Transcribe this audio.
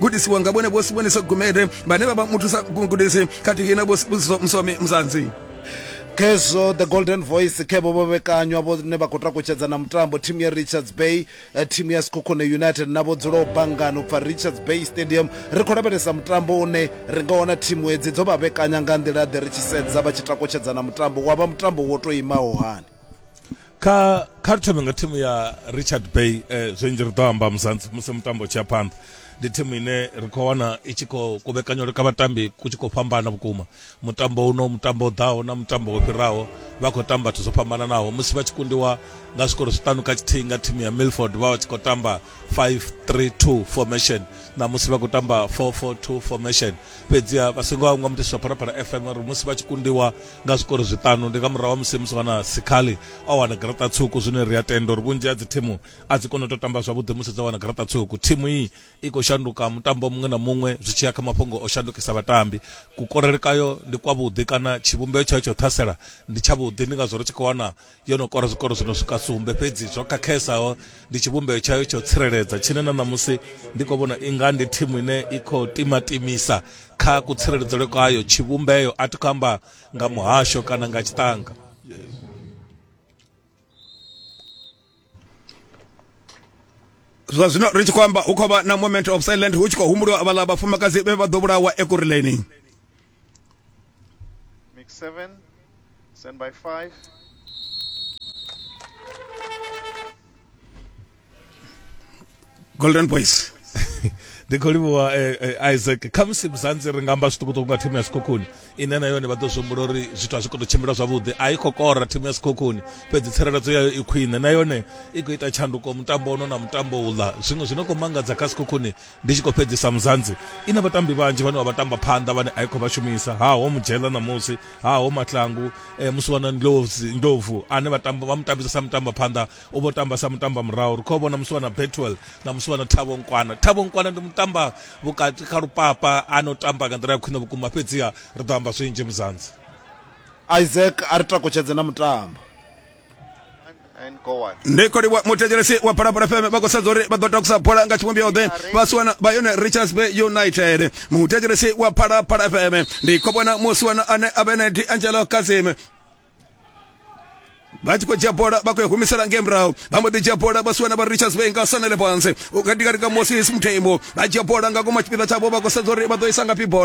gudisiwa nga vhone vho sibonisa gumede vhane vha vha muthusa gudisi khathihi na vho sibusiso msomi mzanzi khezwo the golden voice khe vho vhekanywa vhone vha khou takutshedza na mutambo thimu ya richards bay eh, thimu ya sikhukhune united na vho dzulaho bangani u bva richards bay stadium ri khou lavhelesa mutambo une ri nga wana thimu hedzi dzo vha vhekanya nga nḓila ḓe ri tshi sedza vha tshi takutshedza na mutambo wa vha mutambo wo tou imaho hani kha kha ri thome nga thimu ya richard bay eh, zwinzhi ri ḓo amba musanzi musi mutambo tshi ya phanḓa ndi thimu ine ri khou wana i tshi khou kuvhekanywa leka vhatambi ku tshi khou fhambana vhukuma mutambo uno mutambo ḓaho na mutambo wo fhiraho vha khou tamba vhathu zwo fhambananaho musi vha tshi kundiwa nga zwikoro zwiṱanu kha tshithihi nga thimu ya milford vha vha tshi khou tamba 532 formation na musi vha khou tamba 442 formation fhedziha vha songo hangwa mutiswa pharapara fm uri musi vha tshi kundiwa nga zwikoro zwiṱanu ndi nga murahu wa musi musi wana sikhali o wana garaṱa tswuku zwine ri a tenda uri vhunzhi ha dzi thimu a dzi kone u tou tamba zwavhuḓi musi dza wana garaṱa tswuku thimu iyi i khou shanduka mutambo muṅwe na muṅwe zwi tshi ya kha mafhungo o shandukisa vhatambi kukorele kayo ndi kwavhuḓi kana tshivhumbeo tshayo tsha u ṱhasela ndi tshavhuḓi ndi ngazwo ri tshi khou wana yo no kora zwikoro zwi no swika sumbe fhedzi zwo khakhesaho ndi tshivhumbeo tshayo tsho tsireledza tshine na ṋamusi ndi khou vhona inga ndi thimu ine i khou timatimisa kha kutsireledzelwe kwayo tshivhumbeo a thi khou amba nga muhasho kana nga tshiṱanga zwa zwino ri tshi khou amba hu khou vha na moment of silent hu tshi khou humbuliwa vhaḽa vhafumakadzi vhe vha ḓo vhulawa ekureleni Mix 7, stand by 5. golden boys ndi khou livhuwa eh, eh, isaac khamusi muzanzi ri nga amba zwiṱukuṱuku nga thimu ya sikhokhuni ine na yone vha ḓo zwi humbula uri zwithu a zwi khou tou tshimbila zwavhuḓi a i khou kora thimu ya sikhokhuni fhedzi tsireledzo yayo i khwine na yone i khou ita tshanduko mutambo ono na mutambo uḽa zwiṅwe zwi no khou mangadza kha sikhokhuni Ndi tshi khou fhedzisa, Mzansi i na vhatambi vhanzhi vhane vha vha tamba phanḓa vhane a i khou vha shumisa. Ha ho Mujela ṋamusi, ha ho Mahlangu, eh, musi wana Ndlozi, Ndlovu ane vha tamba vha mu tambisa sa mutamba phanḓa, u vho tamba sa mutamba murahu. Ri khou vhona musi wana Betwell na musi wana Thabo Nkwana. Thabo Nkwana ndi mutamba vhukati kha lupapa a no tamba nga nḓila ya khwine vhukuma fhedziha ri ḓo amba zwinzhi Mzansi. Isaac a ri takutshedze na mutambo. ndi khodi wa muthetshelesi wa phalaphala fm vha khou sedza uri vha ḓo takusa bola nga tshivhumbeo ḓe vha siwana vha yone richards bay united muthetshelesi wa phalaphala fm ndi khou vhona musiwana ane a vhe na di angelo kasim vha tshi khou dzhia bola vha khou humisela ngei murahu vha mbo ḓi dzhia bola vha siwana vha richards bay nga sanele fhansi katikati ka moses muthemo vha dzhia bola nga koma tshipiḓa tshavho vha khou sedza uri vha ḓo isa ngafhi bola